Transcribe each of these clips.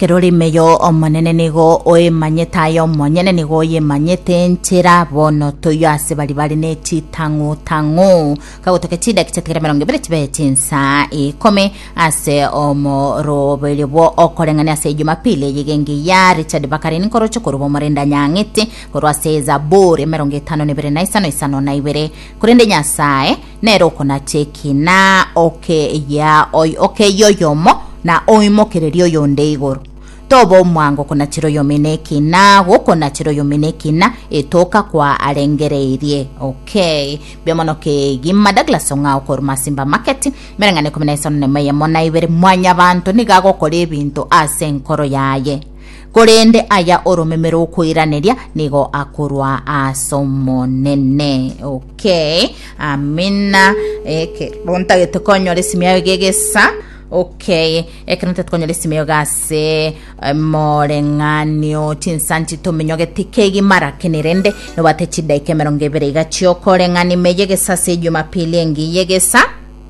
Ekero ore ime yo Omonene nigo oemanyete aye omonyene nigo oyemanyete enchera bono toiyo ase bari bare ne chitang'u tang'u kagotokia chidaki chiatigere mirongo ibere chibe chinsa ikome ase omoroberio bwo okoreng'ania ase ejumapili eye genge ya Richard Bakari nkoroche korwa omorenda nyang'ete korwa ase ezaburi emerongo etano na ibere na isano isano na ibere korende Nyasaye Nere okonacha ekina okeyia oy- okeyia oyomo, na oimokererie oyonde igoro. Toba omwango konachera oyomino ekina, gokonachera oyomino ekina, etoka kwa arengereirie. Okay. Mbuya mono kegima Douglas Ong'ao korwa Masimba Market. Emereng'ana ikomi na isano na emo eyemo na ibere. Mwanyabanto nigo agokora ebinto ase enkoro yaye. Korende aya oromeme rokoiraneria nigo akorwa as'Omonene. Okay, amina. Ekero ntagete konyora esimi yayo gegesa. Okay, ekero ntagete konyora esimi yayo gase moreng'anio chinsanti tominyogeti kegima lakini rende nobate chidaika emerongo ebere iga chiokoreng'ani meyegesa ase ejumapili engiya egesa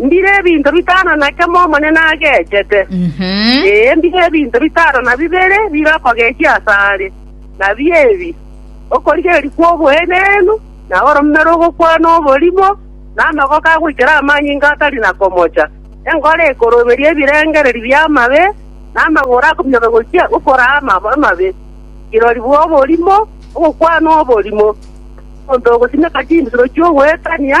Mbire ebinto bitano na kemo Omonene agechete, ee, mbire ebinto bitano na bibere bire okogechia asare, nabio ebi, okorigereria kw'oboenenu, na oromero ogokwana oborimo, na amagoko agoikera amanyinga atari na komocha, enkoro ekoroberia ebirengererio bi'amabe, na amagoro akominyoka gochia gokoraa amabe, kirori bw'oborimo, ogokwana oborimo, omonto ogosimeka chinsuro chi'ogwekania,